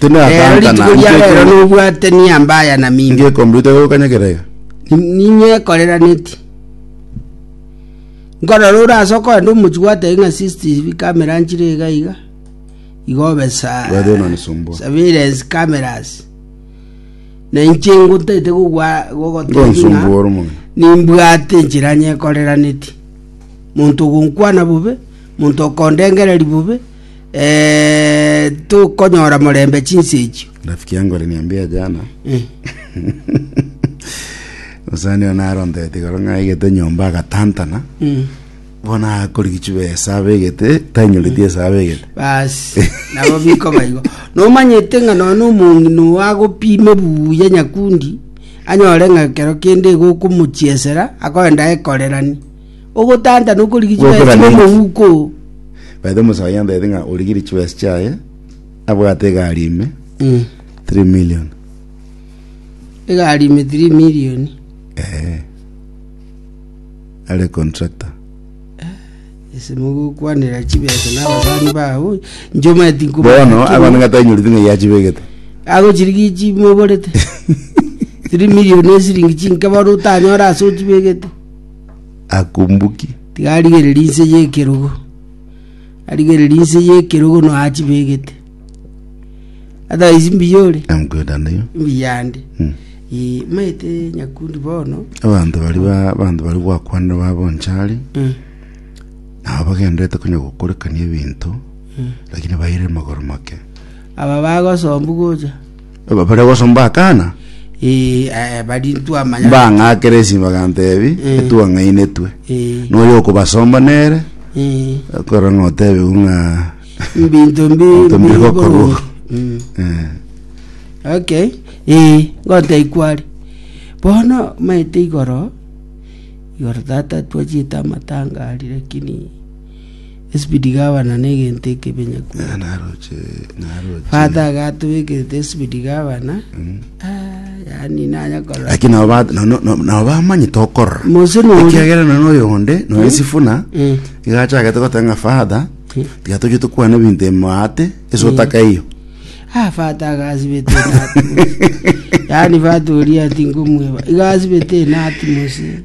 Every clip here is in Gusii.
Tindi Rero rituko nakankana, ria rero ngekombe- nobwate niya mbaya na mimi. ngekombe rita gokanyekera iga. Ni- Ninye ekoreraneti. Nkorora ore ase okogenda omochi gwatebia ng'a CCTV camera nchire iga iga. Igo obe sa. Weather ino nisumbua. Surveillance cameras. Na inche ngotete gogwa gogotebia ng'a Ngonsumbua ore omong'ina. nimbwate enchera nyekoreraneti. Monto ogonkwana bobe, monto okondengereri bobe, eh, tokonyora morembe chinsa echio rafiki yangu aliniambia jana Eh, osani ona arontete igoro ng'a aigete nyomba agatantana mm. bona akorigichu besa abegete tanyoreti esa abegete basi nabo biko baigo nomanyete ng'a nono omong'ina oyo agopime buya nyakundi anyore ng'a kero kende igo okomochiesera akoenda ekorerani ogotanta na okorigia chibesa Gokora chibe neki? omouko oo. Baete omosae oyio antaete ng'a origire chibesa chiaye abwate egari ime 3 million Egari ime 3 million. eh. are contractor Ase mogokwanera chibesa na abasani bao, inche omanyeti nkoba- bono abana ng'a tanyorete ng'a yachibegete agochirigia chimoborete 3 million esiringi chinke bono otanyora ase ochibegete akumbuki. Tiga arigererie inse y'ekerogo, arigererie inse y'ekerogo no achibegete. Otherwise mbuya ore, Namkwenda nayo. mbuya ande. Mm. Eh, maete nyakundi bono. Abanto bari ba abanto bari gwakwanire babonchari Mm. nabo bagenderete konya gokorekania ebinto lakini baire magoro make. Aba bagosombu gocha. Eba baria gosomba akana Eh, eh, bari ntwamanya mbang'akera esi bagantebi Eh. etwang'ainetwe Eh, noyo okobasomba nere eh, okora ng'a otebiwe ng'a mbinto mbi Mbinto mbi mbi gokorwa. boronge. Mm. eh, okay ee ngote ikwari bono maete igoro igoro tata twachete amatanga ari lakini Esibidi gabana negento ekebenyaku. Father agatubekerete esibidi gabana. Yani nanya korora. Lakini nabo ba- no- no- no- nabo bamanyete okorora Mose nori- ekiagera nono oyo onde noe sifuna Mm. igachagete gotenga father tiga toche tokwana ebinto emate ase otaka iyo Ah, fata agasibete enati mose. Yaani fata oria tinkomweba. Igasibete enati mose.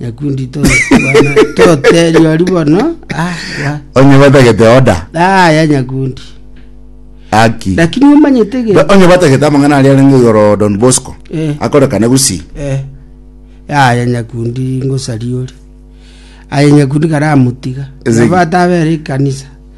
Nyakundi totebwa bana, toterio ari bono. Ah, wa. onye batagete oda Ah, ya nyakundi. aki Lakini omanyete Ba- gento. onye batagete amang'ana aria arenge igoro don bosco Eh. akorekane gusi Eh. Ah, ya nyakundi ngosari ori. Aye nyakundi karamotiga. Ezeki. Bata abere ikanisa.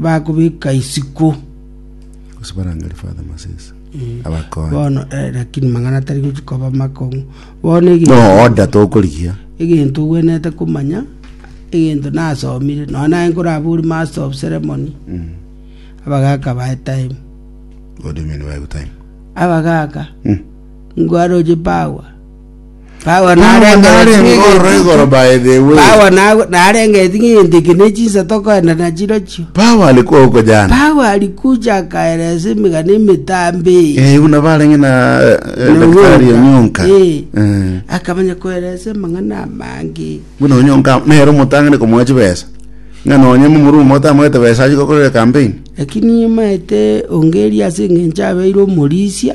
bakobeka isiko. Gose barangeri Father Masese. Abakonye. Bono eh, lakini mang'ana tari gochi koba makong'u. Bono No egento order tokorigia. egento ogwenerete komanya egento nasomire nonya naye nkorabori master of ceremony abagaka bae time What do you mean by time? abagaka Mm. ngwaroche power Paulo Paulo narenge narenge eting'iti- ororo igoro by the way. Paulo na- narenge eting'intiki ne chinsato okoenda nachiro chio. Paulo alikuwa huko jana. Paulo alikuja akaeleza emigana emitambe eye. Eh, buna barenge na eh, eh, Na daktari Onyonka. Onyonka. Eh. Eh. akamanya koeleza amang'ana amange Buna Onyonka nere omotang'ani komoa chibesa. Ng'a nonye momurumo otamwete besa achi gokorera campaign. lakini nimaete ongeria ase eng'encho abeire omorisia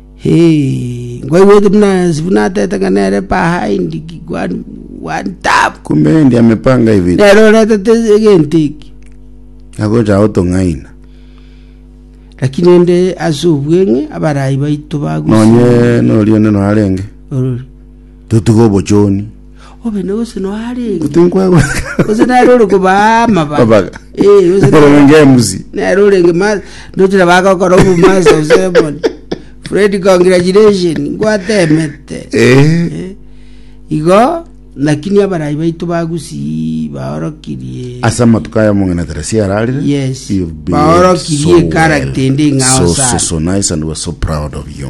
Nkoigwa ekero buna Sifuna ateete ng'a nere behind one, one tap. Kumbe endi amepanga ibere. Nere oretete egento eki. Agocha agotong'aina. Lakini ende ase obweng'e abarai baito bagusii. Nonye noria onde noo arenge. Orori. Totige obochoni. Obene gose noa arenge. Gose nkwegwekana. Gose nere ore kobaa amabaga. Amabaga. Eh, gose Nere nere- orenge emusi. nero orenge ma ndochire bagokora obu master of ceremony fred congratulation ngwatemete Eh. Eh, igo lakini abarai baito ba gusii baorokirie Asa amatuko aya mong'ina Teresi ararire. Yes. You've been Baorokirie so character well, ende ing'ao so, so, sana. so nice and we're so proud of you.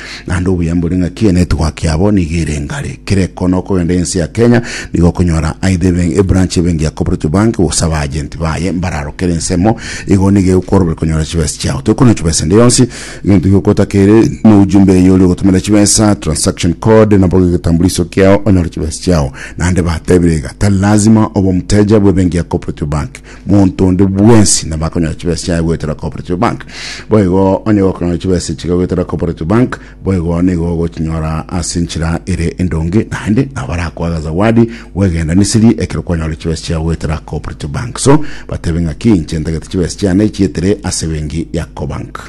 naende obuya mbore ng'a ki enetwork yabo nigo ere engare kera ekoona okogenda ense ya kenya nigo okonyora aidha ebe- ebranch ebenki ya cooperative bank gose abaagenti baye mbararo kera ensemo igo nigo egokworoberia konyora chibesa chiao toikorera chibesa ende yonsi egento gioka otakere na ujumbe eye oria ogotomerera chibesa transaction code nabo egetambuliso kiao onyore chibesa chiao naende batebire iga tari lazima obe omoteja bw'ebenki ya cooperative bank Monto onde bwensi nabo akonyora chibesa chiaye goetera Cooperative Bank. Boigo onye gokonyora chibesa echi goetera Cooperative Bank, boigo nigo ogochinyora ase enchera ere endonge naende nabo barakoaga zawadi bw'egenda Misiri ekero kwanyora chibesa chiago goetera Cooperative Bank. So, batebe ng'aki, Inche ntagete chibesa chiane chietere ase ebenki ya Cobank.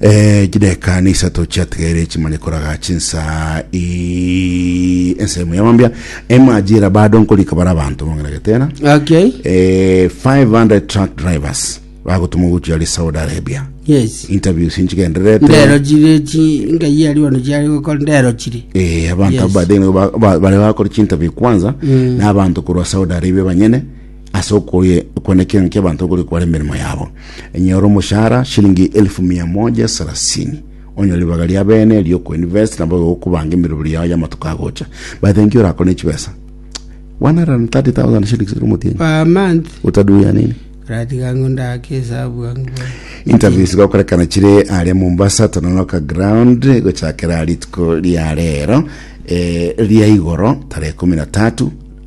Eh, chideka ni isato chiatigaire chimane koraga chinsa i ensemo ya mambia emajira bado nkorika bara abanto bong'ina getena okay eh, 500 truck drivers bagotuma gochia ari saudi arabia yes interviews ndero nchigendererete chire chi ngai ari ono chiari gokora ndero chire Eh, abantu Yes. abadene ba- ba- bare bakora chinterview kwanza Mm. na abantu korwa saudi arabia banyene Ase okoyekwana ekirengo ki'abanto okore kware emeremo yabo, enyora omoshahara shilingi elfu mia moja sarasini onyore ribaga ria bene riokoinvest nabo gokobanga emeroberi yao y'amatuko agocha. By the nki orakore ne chibesa 130,000 shillings ere omotienyi per month utaduya nini ratiga ng'o ndake esabu bwangu bwangu interview zigakorekana chire aria mombasa tononoka ground gochakera rituko ria rero eh, ria igoro tarehe kumi na tatu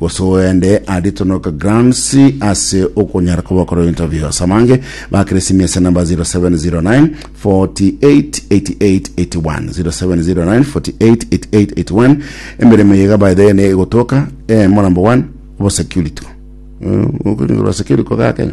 gose oende aritonoke grants ase okonyara koba okora ebinto ebio ase abange bakere simi ase namba 0709 488881 0709 488881 emeremo yega by the way ne egotoka eh, morambo one obosecurity Eh, okoringo bwa security koga kenya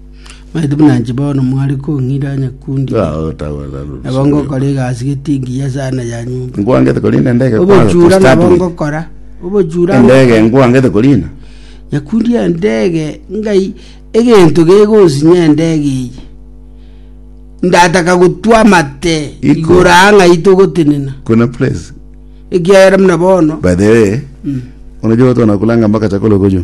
Maete buna inche bono mware kong'ira nyakundi, nabo ngokora egasi getingi ya sana ya nyomba. Nkwangete korina endege kwaga Obochura nabo kustadwin. ngokora, obochura Endege nkwangete korina. nyakundi endege ngai egento gegonsinya endege eye ndataka gotwa amate Iko. igoro aa ng'ai togotenena Kuna place. ekiagera buna bono By the way, unajua watu wanakulaanga mpaka chakula huko juu.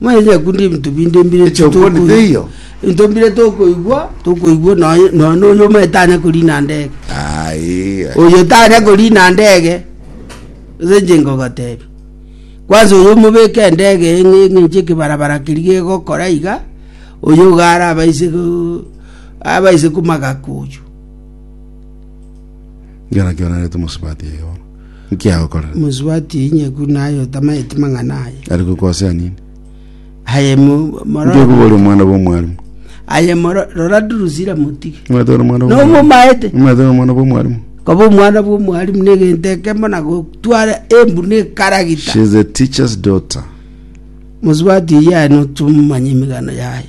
Manye nyekunde ebinto binde mbire Eche okoni tokoigwa. teiyo? Ebinto mbire tokoigwa, tokoigwa nonya nonya na oyo omanyete anya korina ndege. Aye. Oyo tanya korina ndege, ase inche nkogotebia. Kwanza oyo omobeke endege eye ng'e- ng'enche ekebarabara keria gegokora iga, oyo iga arabaise go- abaise komagaku oywo. Ngera kio narete omosubati oyo bono. Nki agokorera? Mosubati inye buna aye otamaeti mang'ana aye. Ari gokosa ase nini? Aye mo- Nki mororo. okoba ore omwana bw'omwarimu? Aye moro rora Durusira motige. Omanyete ore omwana bw'omwarimu? Nomomaete. Omanyete ore omwana bw'omwarimu? Koba omwana bw'omwarimu negento ekemo na gotwara embuni ekaragita. She is a teacher's daughter. Mosubati iye aye notomanya emegano yaye.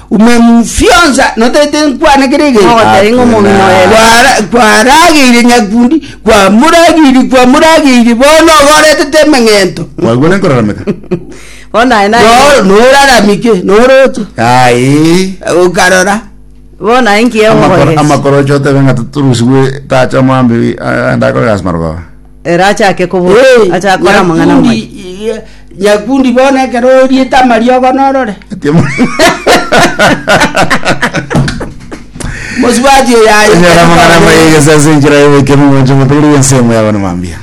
Omomfionsa notaete nkwane kera egento. Mogoteria ng'a omong'ina oye ere. Kwara- kwarageire nyakundi kwamorageiri kwamorageiri bono ogoretete emeng'ento Mwagwa ne nkorarameka. Bono naye naye. No- noraramike noroche Ai. okarora Bono naye nkiya Amakoro- ogokoresa. amakorocho otebe ng'a torusigwe tacha omwambi ah, ndakore gasi marogoba. Ere achake kobua, Eh, achake kora amang'ana Nyakundi, amaya. eh, nyakundi bono ekero oriete amariogo norore mosubati oyo aye Enyora amang'ana amaya egesasi enchera y'oboikemi omonche omotebi bw'ensemo yabo na mambia.